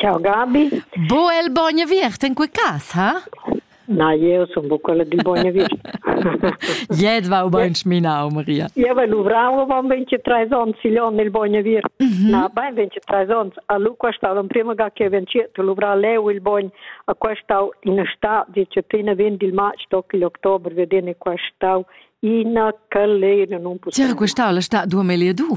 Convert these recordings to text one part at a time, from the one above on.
Ciao Gabi. Bu el bogn aviert in quei cas, ha? Na, jeu sun buca quella dil bogn aviert. Jet va bein schminau, Maria. Eu vai luvrau avon 23 ons igl onn il bogn aviert. Mm -hmm. Na, bein 23 ons. A lu qua stau l'emprema ga che venciet luvra leu il bogn, a qua stau in sta, dice tina vend il match toc il october vedene qua stau ina calera non possiamo. C'era questa la sta 2002.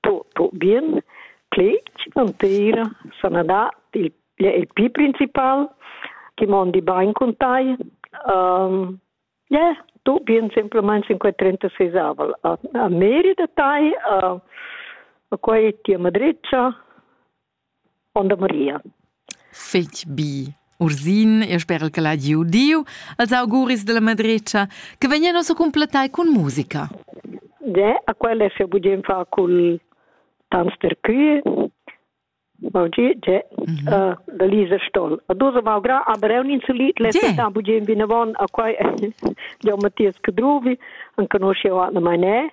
po, po bien clec entira sanadad il, il più principal che mondi bain con tai um, yeah, tu bien semplicemente 536 a, a meri da tai a, a quei tia madreccia Onda Maria. Fetg bi. Ursin, e sperel che l'ha giu Diu, als auguris della madretscha, che vegnan ossa completai cun musica. De, a quelle se bugen fa cul tans per cui. Oggi c'è mhm. uh, da Lisa Stoll. A dosa malgra, aber è un insulit, le se tan bugen vinavon a quai di Matthias Cadruvi, an conosce o an mai ne.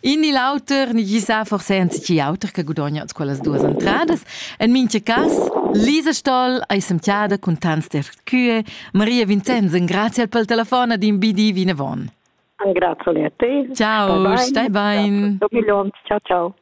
In ni l'auter ni gisà forse anzi auter che gudogna quellas duas entradas. En mintga cas Lisa Stoll ei semtiada cun tants dercue. Maria Vincenz, grazie pel telefon ad in BD vinavon. Grazie a te. Ciao, stai bain. Do ciao ciao.